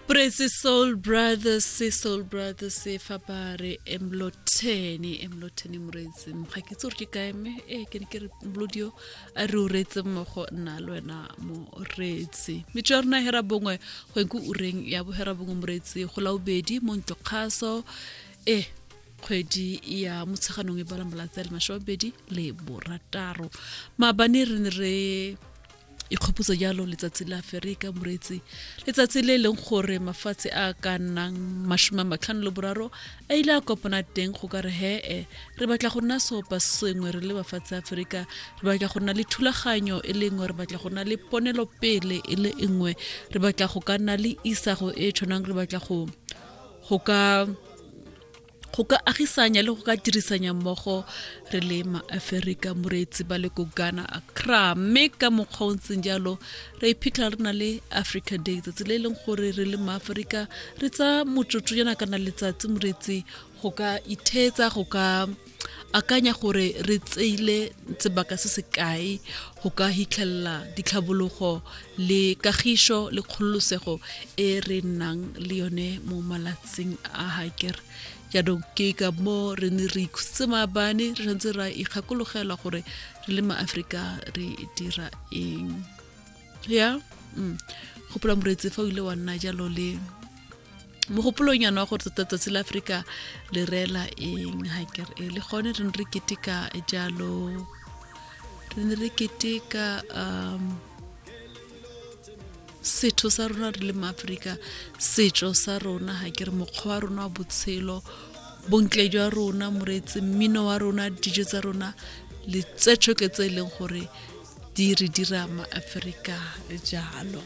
Praise Soul Brothers, se Soul Brothers se fa ba re emlotheni emlotheni moretse ga ke tsore ke kae me e ke ne ke re mlodio a re uretse mmogo nna le wena moretse metso ya rona hera bongwe go enko ureng ya bohera bongwe moretse go la ubedi mo ntlo kgaso e kgwedi ya motsheganong e bala malatsi a le masome a mabedi le borataro maabane re ne re ikgopotsa jalo letsatsi la aferika moreetsi letsatsi le e leng gore mafatshe a ka nnang masome a matlhano le boraro a ile a kopana teng go ka re hee re batla go nna seopa sengwe re le bafatshe aferika re batla go nna le thulaganyo e le nngwe re batla go nna le ponelopele e le nngwe re batla go ka nna le isago e tshwanang re batla go go ka go ka agisanya le go ka dirisanya mmogo re le maaferika moreetsi ba le ko ghana accra mme ka mokgwa o ntseng jalo re iphitlha re na le africa day tsatsi le e leng gore re le maaferika re tsa motsotso yana kana letsatsi moreetsi go ka itheetsa go ka akanya gore re tseile sebaka se se kae go ka hitlhelela ditlhabologo le kagišo le kgololosego e re nnang le yone mo malatsing a haker jaanong ke ka mo re ne re ikhutse maabane re tshwanetse ra ikgakologela gore re le maaforika re dira eng ya mm. gopola moreetsi fa o ile wa nna jalo le mogopolong yana wa gore tota tsatsi la aforika le reela eng ga kere e le gone re ne re keteka jalo re ne re keteka um setho sa rona re le maaforika setso sa rona ga kere mokgwa wa rona wa botshelo bontle jwa rona moreetsi mmino wa rona dijo tsa rona le tse tshoke tse e leng gore di re dira maaforika jalo